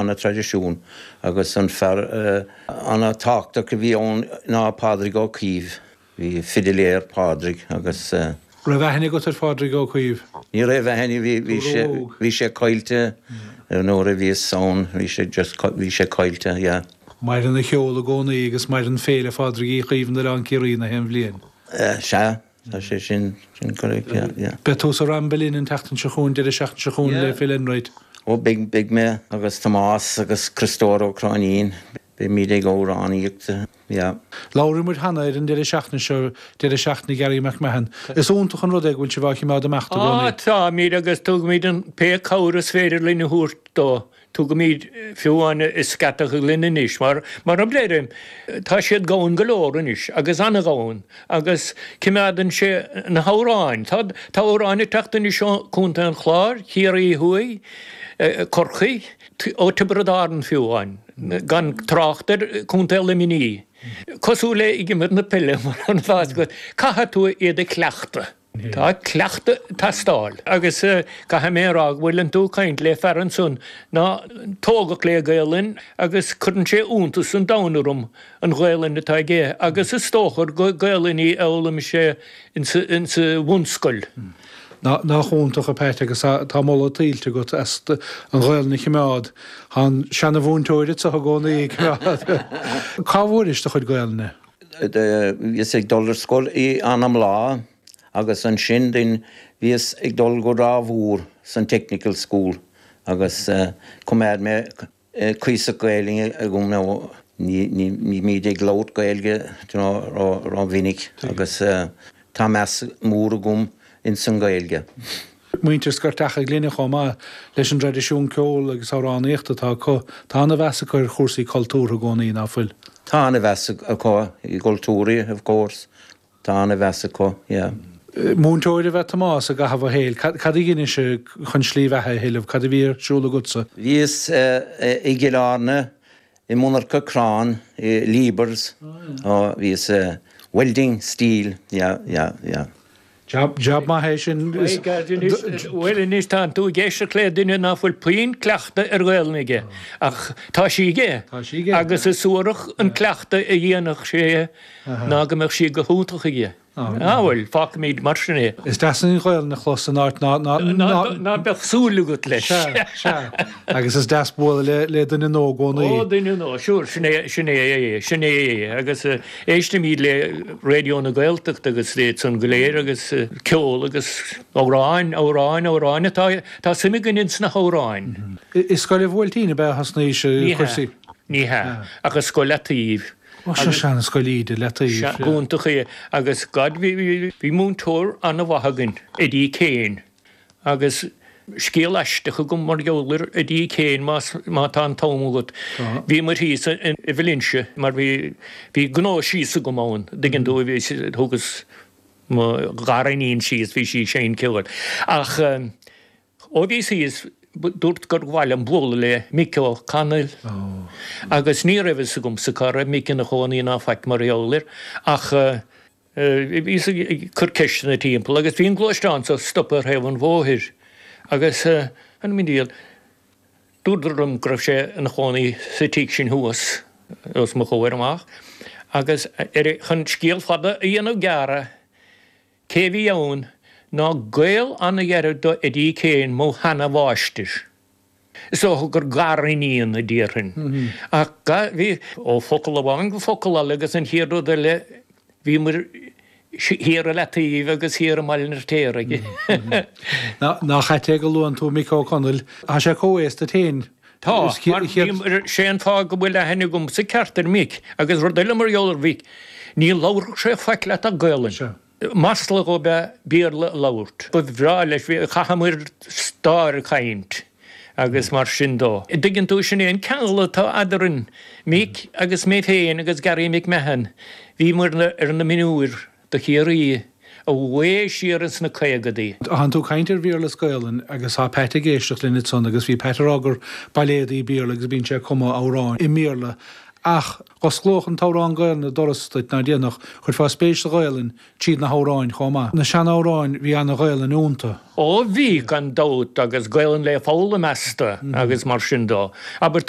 an traidisiún agus fear ana-thábhachtach a bhí ann ná Pádraig Ó Caoimh. B'é fidiléir Pádraig agus. An raibh aithne agat ar Phádraig Ó Caoimh? Ní raibh aithne, bhí bhí sé caillte nuair a bhíos ann, bhí sé just bhí sé caillte, yeah. Maireann a cheol i gcónaí agus maireann Féile Phádraig Uí Chaoimh in Oileán Ciarraí gach aon bhliain. Sea, Tá sé sin, sin correct, yeah, yeah. Beidh tú sa Ramble Inn an tseachtain seo chugainn, deireadh seachtaine seo chugainn le Phil Enright. Ó beidh, beidh mé agus Tomás agus Cristóir Ó Cróinín, beimid ag amhránaíocht, yeah. Labhair muid cheana ar an deireadh seachtaine seo, deireadh seachtaine Gary McMahon. Is iontach an rud é go bhfuil sibh á chimeád ag imeacht i gcónaí. Táimid agus tugaimid aon phé cabhair is féidir linn a thabhairt dó. Tugaimid fiú amháin scata linn anois, mar, mar a deirim, tá siad ag amhrán go leor anois, agus ag amhrán, agus coimeádann sé na hamhráin. Tá, tá amhráin ag teacht anois ó Chontae an Chláir, Ciarraí Thuaidh, Corcaí, ó Thiobraid Árann fiú amháin, gan trácht ar Chontae Luimní. Cosúil le ag imirt na peile, mar atá a fhios agat, caithfidh tú iad a chleachtadh. Tá cleachtadh ag teastáil agus caithfidh mé a rá go bhfuileann tú ag caint le fear ansan ná tógadh le Gaelainn agus cuireann sé iontas an domhain orm an Ghaelainn atá aige agus is dócha gur Gaelainn í a dh'fhoghlaim sé insa bhunscoil. Nach iontach, a Phat, agus tá moladh tuillte agat as an Ghaelainn a chimeád. Tá an seana-mhúinteoir anso i gcónaí ag cimeád. Cá bhfuairis do chuid Gaelainne? Bhíos ag dul ar scoil i Anabla agus ansin then bhíos ag dul go Ráth Mhór san Technical School agus choimeád mé cuíosach Gaeilge agam nó ní bhímíd ag labhairt Gaeilge ró mhinic agus Tá meas mór agam ins an Ghaeilge. Muintir Scairteach an Ghlinne chomh maith leis an dtraidisiún ceoil agus amhránaíochta atá acu, tá an-mheas acu ar chúrsaí cultúrtha i gcónaí, ná fuil? Tá an-mheas acu i gcultúr, of course. Tá an-mheas acu, yeah. Múinteoir ab ea Tomás i gcaitheamh a shaoil. Cad a dheinis chun slí bheatha a thuilleamh? Cad a bhí ar siúl agatsa? Bhíos i gCill Airne I monarcha crann i Liebherr's, bhíos ag welding steel, yeah, yeah, yeah. Jab, jab maith é sin. Bhuel anois tánn tú ag éisteacht le duine ná fuil puinn cleachtadh ar Ghaelainn aige, ach tá sí aige agus is suarach an cleachtadh a dhéanfadh sé ná go mbeadh sí go hiontach aige. Á, bhuel, fágfaimid mar sin é. Is deas an Ghaolainn a chlos in áit ná. Ná beadh súil agat leis. Sea, sea. Agus is deas bualadh le, le duine nua i gcónaí. Ó, duine nua, sure, sin é, sin é, sin é. Agus éistimid le Raidió na Gaeltachta agus iad san go léir agus ceol agus amhráin, amhráin, amhráin atá, tá suim againn ins na hamhráin. I scoil an Bhuailtín ab ea a thosnaís an cúrsa? Ní hea. Ní hea, ach i Scoil Leataoibh. Ó seo seana scoil Íde Leataoibh. Iontach é agus go bhí múinteoir ana mhaith againn Eddie Kane agus scéal aisteach agam mar gheall ar Eddie Kane más má tá an t-am agat. Bhí muid thíos i Valentia mar bhí bhí gnó síos agam ann dtuigeann tú bhí thugas mo ghariníon síos bhí sí ag seinm ceoil ach Ó bhí sí is dúirt gur mhaith liom bualadh le Mick O Connell agus ní raibh fhios agamsa cá raibh Mick ina chónaí ná faic mar gheall air ach bhíos ag cur ceisteanna timpeall agus bhí an gluaisteán seo stoptha ar thaobh an bhóthair agus an diail dúradar liom go raibh sé ina chónaí sa tigh sin thuas os mo chomhair amach agus ar chun scéal fada a dhéanamh gearr Cé a bhí ann ná gaol an-ghearr do Eddie Kane, mo sheana-mháistir. Is dócha gur gar-iníon a déarfainn. Ach ga, bhí, ó focal amháin go focal eile agus an chéad rud eile bhíomar thiar i Leataoibh agus thiar i mBaile an Fhirtéaraigh. Nach ait é go luann tú Mick Ó Conaill, tá sé comhaos duit fhéin. Tá, mar sé an fáth go bhfuil aithne agam sa cheart ar Mhick, agus rud eile mar gheall ar Mhick, ní labharfadh sé faic leat ach Gaolainn. Sea. Masla dhó ab ea Béarla a labhairt. Ba bhreá leis, chaitheamair stáir ag caint agus mar sin de. Dtuigeann tú, sin é an ceangal atá eadarainn, Mick agus mé féin agus Garry McMahon, bhíomair ar na mionúir do Chiarraí, abhfad siar ins na caogadaí. Tánn tú ag caint ar Bhéarla is Gaolainn agus tá Pat ag éisteacht linn ansan agus bhí Pat ag rá gur bailéadaí Béarla agus bíonn sé ag cumadh amhráin i mBéarla ach go n-osclódh an t-amhrán Gaolainn doras duit ná déanfadh, chuirfeá spéis sa Ghaolainn tríd na hamhráin chomh maith. Na sean-amhráin, bhí an-Ghaolainn ionnta. Ó bhí, gan dabht, agus Gaolainn le foghlaim asta agus mar sin de. Abair, tá.